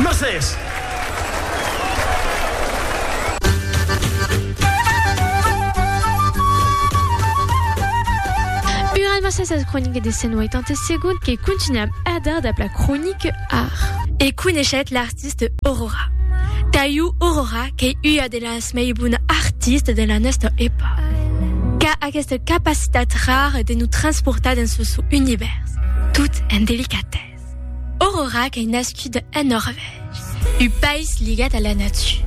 Mercés. Ur an mercés ath cronique de Sent 87 que continuam ath dar dab la cronique ar. E coneishetz l'artiste Aurora. Taiu Aurora qu'ei ua de las. dels mei bons artistes de la nòsta epòca, qu'a aquesta capacitat rara de nos transportar dens lo sò univèrs, tot en delicatèsa. Aurora qu'ei nascuda en Norvègia, un país ligat a la natura.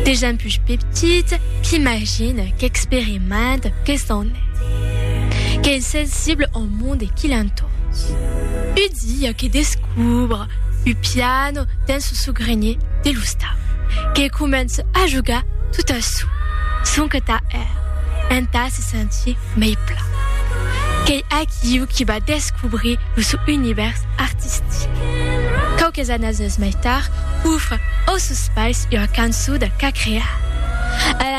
De gent puish petita qu'imagina, qu'experimenta, que s'en hè, qu'ei sensibla au monde qui l'entoure. Un dia que descubra. Lo piano dens lo sogrenhe de lo stau que comença a jogar tot a çò son que tà èr entà se sentir mei plan. Qu'ei aquiu qui va descobrir lo sò univèrs artistic. Quauques annases mei tard, ofre òssos pais ua cançó de ca crear.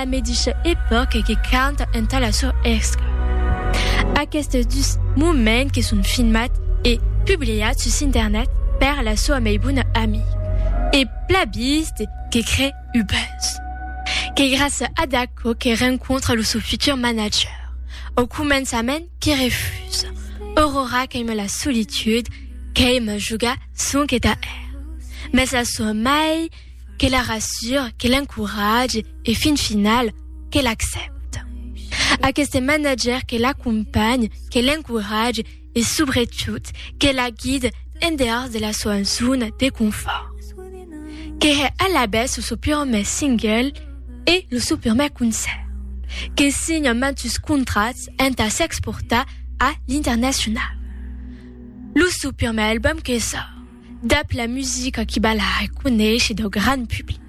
la medisha epòca que canta entà la sor Èsca. Aquestes dus moments que son filmats e publiats sus internet per la soa mei bona amic e plabiste que cree u buzz. Qu'ei gràcia ad aquò que rencontra lo sò futur manager, au començament que refusa, Aurora qu'aima la solitude, qu'aima jogar sonque tà er. Mès la soa mei que la rassure, que l'encoratge e fin final que l'accepte. Aqueste manager que l'acompanhe, que l'encoratge e sobretot que la guide en dehors de la soa zona de confort. Que he a la bes o so purme single e lo so purme concert. Que signa mantus contrats entà s'exportar a l'internacional. Lo so purme album que sort. Dab la musica qui balha e coneishe dau gran public.